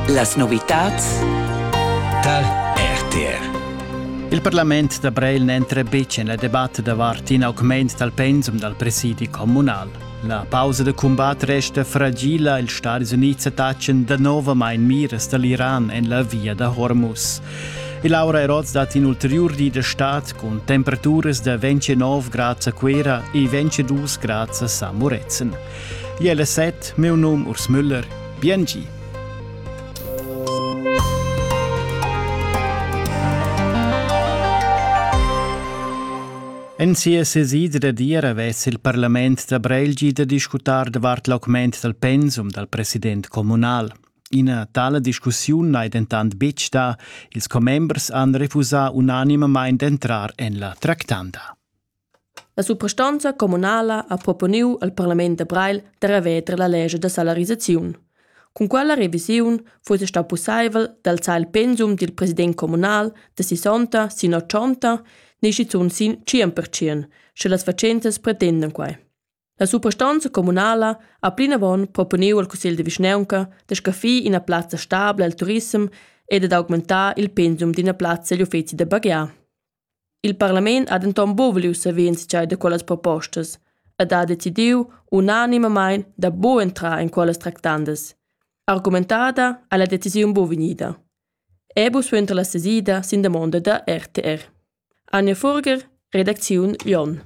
Las novitads tar RTR. Il parlament da Breil n'entra betg en la debatta davart in augment dal pensum dal presidi communal. La pausa da cumbat resta fragila, ils Stadis Unids attachan danovamain miras da l'Iran en la via da Hormuz. E Laura Eroz dat in ulterior di da stad cun temperaturas da 29 grads a Cuera e 22 grads a Samuretzen. Jella set, meu num Urs Müller, biengi. En sia sesida da dir avess il parlament da Brelgi da discutar davart l'augment dal pensum dal president communal. Ina tale discussiun n'hai dentant betg da, ils commembers han refusà unanimamain d'entrar en la tractanda. La suprastonza communala ha proponiu al parlament da Breil da reveter la lescha da salarisaziun. Cun quella revisiun fuss stau pusseivel d'alzar il pensum dil president communal da sessanta sin ochonta ne schizun sin tschien per tschien, sche las fatschentas pretendan quei. La suprastonza communala ha plinavon proponiu al cussegl de vischnaunca da scaffir ina plazza stabla al turissem e dad augmentar il pensum d'ina plazza egl uffeci da baghiar. Il parlament ha denton buc voliu saver entscheider da quellas propostas ed ha decidiu unanimamein da buc entrar en quellas tractandas. Argumentada ha la decisiun buc vegnida. Ebu suenter la sesida sin damonda da RTR. Anja Furger, redacziun Jon.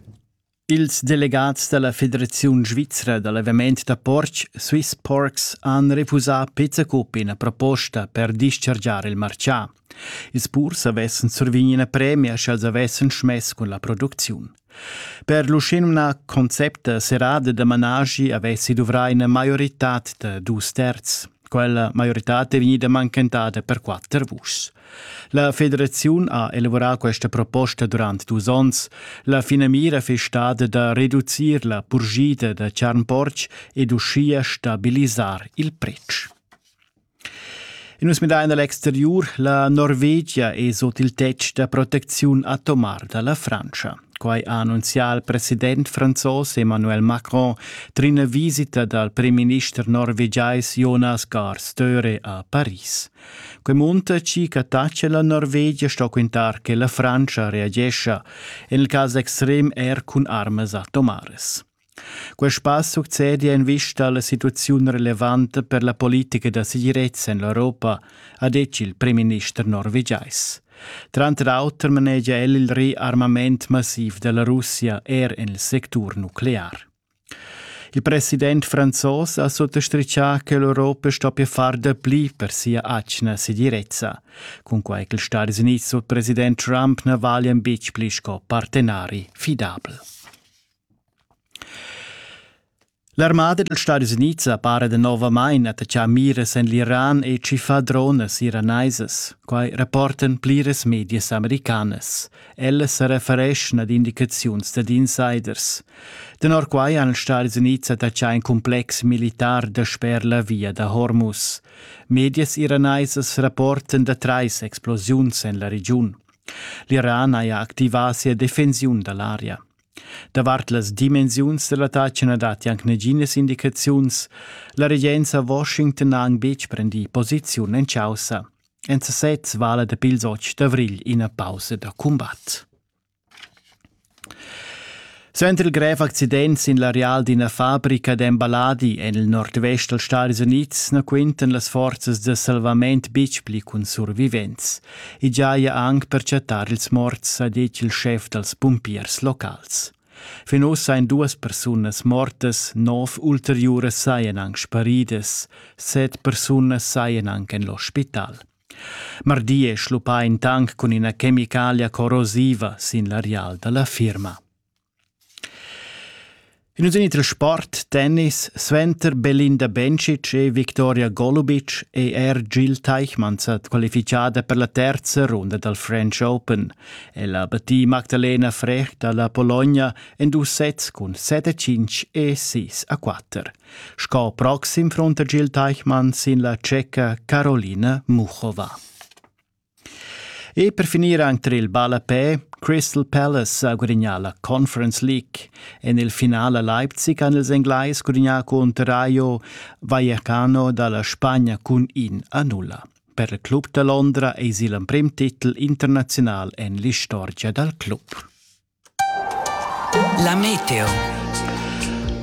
Ils delegats da la Federaziun svizra da l'aviment da portg Swiss Porks han refusà pezza cup ina proposta per dischargiar il martgà. Ils purs avessan survigni ina premia sch'els avessan schmess cun la producziun. Per l'uschenumnà concepta serrada da managi avessi duvrà ina maioritad da dus terz. Quella maioritad è vegnida mancantada per quatter vuschs. La federaziun ha elaborà questa proposta durant dus onns. La finamira fiss stada da reducir la purgida da charn-portg ed uschia stabilisar il pretsch. Nus midain l'exteriur, la Norvegia è sut il tetg da proteziun atomar da la Frantscha. Quai ha annunzià il president franzos Emmanuel Macron trin visita dal premierminister norvegiais Jonas Gahr Støre a Paris. Quei muntaci che tace la Norvegia sto quintar che la Francia reagescha, en il cas extrem er cun armas atomares. Quest pass succede in vista alla situazione relevante per la politica da sicurezza in l'Europa, ha detto il premier norvegiais. Tranter auter manegia el il rearmament massiv della Russia er en il sector nuclear. Il president franzos ha suttastritgà che l'Europa stoppia far dapli per sia atgna segirezza. Cunquai ch'ils Stati Unids sut president Trump na valian betg pli sco partenari fidabel. L'armada dals Stati Unids ha para danovamain attaccà miras en l'Iran e tschiffà dronas iraneisas. Quai rapportan pliras medias americanas. Ella sa refereschna ad indicaziuns dad insiders. Tenor quai han els Stadis Unids attaccà in complex militar dasper la via da Hormuz. Medias iraneisas rapportan da trais explosiuns en la regiun. L'Iran haja activà sia defensiun da l'aria. Davart las dimensiuns da l'attacc na datti anc naginas indicaziuns. La regenza a Washington ha anc betg prendì posiziun en chaussa. En sesez vala dapi ils otg d'avrigl ina pausa da cumbat. Suenter il grev accident sin l'areal d'ina fabrica d'emballadi en il nordvest dals Stadis Unids na quintan las forzas da salvament betg pli cun survivents. I giaja anc per chattar ils morts, ha ditg il schef dals pumpiers locals. Fin ussa ein duas persunas mortas, nov ulteriuras saien aunc sparidas, set persunas saien aunc en l'ospital. Mardi è schluppà in tank cun ina chemicalia corrosiva sin l'areal da la firma. In usin trasport, tennis, suenter Belinda Bencic e Victoria Golubic è er Jill Teichmann sa qualifichada per la terza runda dal French Open. Ella battì Magdalena Frech dalla Pologna en dus sets cun 7 5 e 6 a 4. Sco proxim fronta Gil Teichmann sin la tscheca Carolina Muchova. E per finir anche il ballapè, Crystal Palace ha gudagnà la Conference League. En il finale a Leipzig han ils Englais gudagnà contro Rayo Vallecano dalla Spagna cun 1 a 0. Per il club da Londra eisi l'emprim titel internaziunal en l'istorgia dal club. La meteo.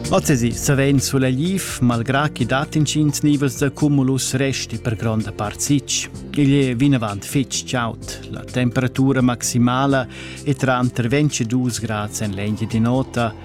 Ozzesi savein sulegliv, malgrà chi dat inschins nivels da cumulus resti per gronda part sitg. Igl è vinavant fitg chaud, la temperatura maximala è tranter 22 grads en l'engine di nota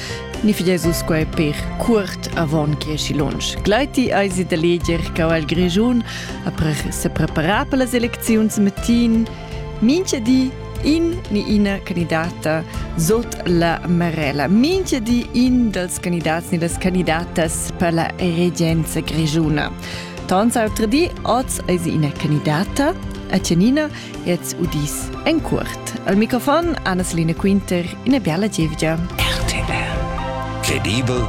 Ni fi Jesus quai per curt avon che si lunsch. Gleiti eisi da leger che il Grigiun après se prepara per las elecziuns matin mincha di in ni ina candidata sot la marella. Mincha di in dals candidats ni das candidatas per la regenza grigiuna. Tons autre di, oz eisi ina candidata, a Tjanina, Jetzt udis en cuort. Al microfon Anna-Selina Quinter, ina biala gievgia. RTR. Credibel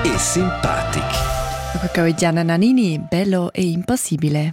e simpatic. Dopo che Gianna Nannini, bello e impassibile.